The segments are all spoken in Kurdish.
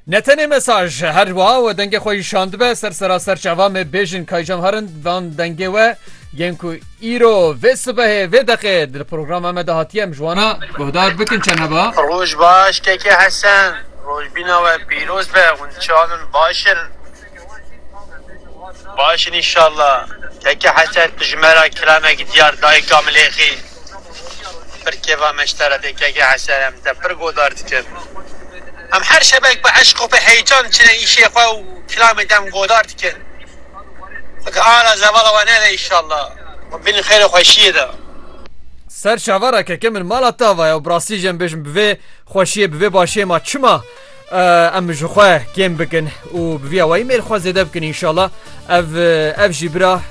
Ne tenê mesaj her wa we dengê xwe îşan dibe ser seraser çava me bêjin kaycam herin van dengê we yên ku îro vê sibehê vê deqê di programa me de hatiye em ji wana guhdar bikin çend heba Roj baş keke Hesen rojbîna we pîroz be hûn çanin baş in. Baş in înşallah. Keke Hesen pijmera kilamek diyar dayika milêxî pir kêfa me ji te re tê keke Hesen em te pir godar dikin. Em her şevek bi eşq û bi heyecan çine îşê xwe û kilamê te em godar dikin. Xwedî ara zevala we nede înşallah. Xwe bînin xêr û xweşiyê de. Ser çavara keke min mala tava ye û bi rastî jî em bêjim bi vê xweşiyê bi vê başiyê ma çima? Em ji xwe kêm bikin û bi vîya wayî mêr xwe zêde bikin înşallah ev ev jî bira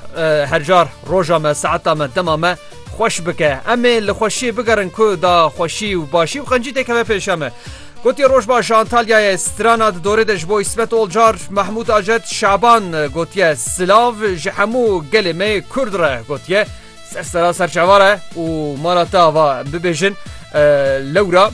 hercar roja me saeta me dema me xweş bike em ê li xweşiyê bigerin ku da xweşî û başî û qencî têkeve pêşe me. Gotiye Rojbaş ji Antalyayê strana di dorê de ji bo İsmet Olcar, Mahmud Ajet, Şaban gotiye silav ji hemû gelê me Kurd re gotiye ser sera serçavare û mala te ava bibêjin lewra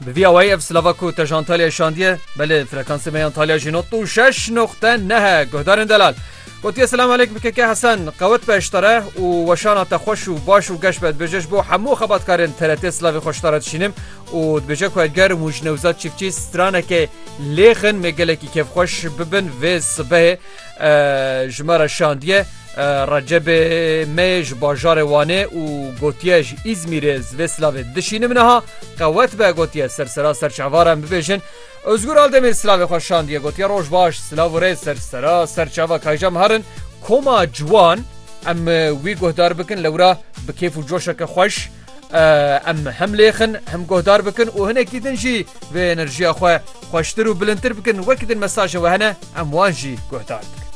Bi vî awayî ev silava ku te ji Antalyayê şandiye, belê frekansê me yan Talya jî not û şeş noqte nehe guhdarên delal. Gotiye selam aleyk bikeke Hesen qewet be iştare û weşana te xweş û baş û geş be dibêje ji bo hemû xebatkarên TRT silavê xwe ji te re dişînim û dibêje ku edger û ji newzad çîfçî stranekê lêxin mê gelekî kêfxweş bibin vê sibehê ji me re şandiye Recebê me ji bajarê Wanê û gotiye ji Îzmîrê ez vê silavê dişînim niha qewet be gotiye sersera ser çavara em bibêjin Özgür Aldemîr silavê xwe şandiye gotiye roj baş silav û rê sersera ser çava kayja me herin koma ciwan em wî guhdar bikin lewra bi kêf û coşeke xweş Em hem lêxin hem guhdar bikin û hinekî din jî vê enerjiya xwe xweştir û bilindtir bikin wekî din mesaje we hene em wan jî guhdar bikin.